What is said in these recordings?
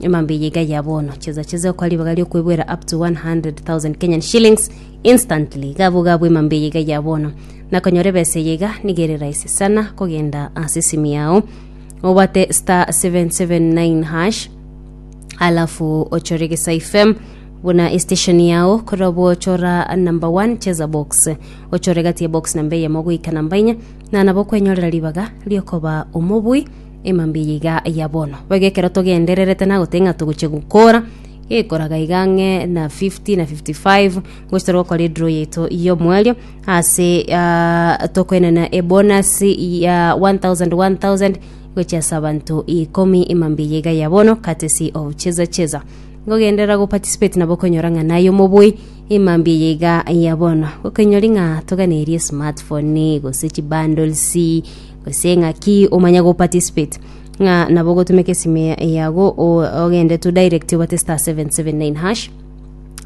Emambia eye iga ya bono, cheza cheza okwa ribaga riokwebwera up to 100,000 Kenyan shillings instantly. Gabo gabo emambia eye iga ya bono. Na konyora ebesa eye iga niga ere rahisi sana kogenda ase esimu yao. Obate star 779 hash alafu ochore Gesai FM buna station yao korobo chora number 1 cheza box ochore gati ya box namba eyemo goika namba enye na nabo kwenyorera ribaga riokoba omobui Ema mbiya iga ya bono. Boigo ekero togendererete nagoteba ng'a togochia gokora, gekoraga iga ang'e na 50 na 55 ngochia tore gokora edraw yaito y'omoerio ase tokoenana ebonasi ya 1000 1000 gochia ase abanto ikomi ema mbiya iga ya bono courtesy of Cheza Cheza. Ngogenderera goparticipate nabo okonyora ng'a naye omoboi ema mbiya iga ya bono. Gokoinyori ng'a toganeiri esmartphone gose chibundles Gose ng'aki omanye go participate ng'a nabo ogotumeka esime yago o- ogende to direct obate star 779 hash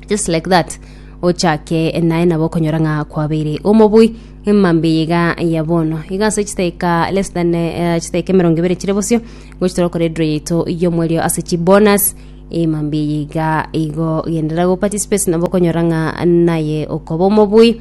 just like that ochake naye nabo okonyora ng'a kwabeire omobui emambe yiga ya bono iga ase chidaika less than eh, chidaika emerongo ebere chire bosio gochi torokora edro yaito y'omwerio ase chibonus emambe yiga igo gendera go participate nabo okonyora ng'a naye okoba omobui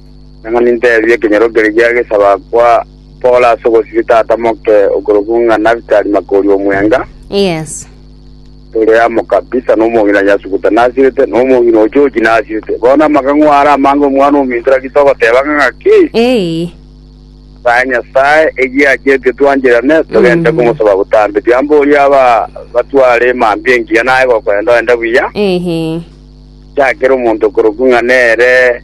Nang'o ninteebie ekenyoro keria gesaba kwa Paul ase ogosibia tata moke okorokwa ng'a Nafitali Makori omwenga, Yes. ore amokabisa, na omong'ina Yasukuta nasirete, na omong'ina o Joji nasirete. Bono amang'ang'u aya are amange omwana ominto naki togoteba ng'a ng'aki? Ee. Sae Nyasae, eyio achiete twancherane, togende Mm. komosaba botambe. Tiamboria aba batware emambia engiya naye gokoenda ogende buya, Ehe. chakera omonto okorokwa ng'a nere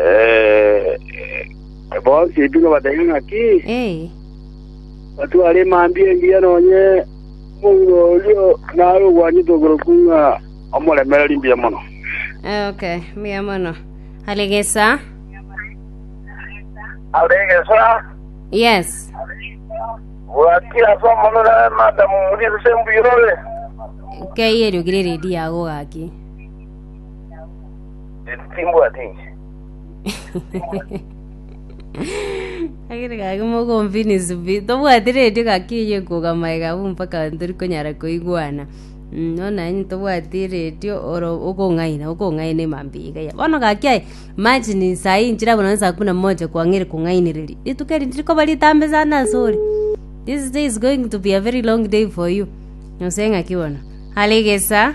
Eh, bonsi bino bataiga ng'aki Ee, batware emambi engiya nonye omonto orio nare ogwanyete okorokwa ng'a omoremereri mbuya mono eh, okay, mbuya mono. Alegesa. alegesa Yes. bwatia somonore madamu muriso sembuyore Kei eriogire redi yago gaki. Timbwati inche. Agere gaki mogombi ni subi tobwati redio gaki eye kogama iga abu mpaka ntori konyara koigwana Mm, no nanyi tobwati redio oro okong'aina okong'aina emambi iga ya bono gaki aye machi ni saa hii nchira bono saa kumi na moja kwang'eri kong'ainereria rituko eri ntiri koba ritambe sana ase ore this day is going to be a very long day for you nose ng'aki bono are egesa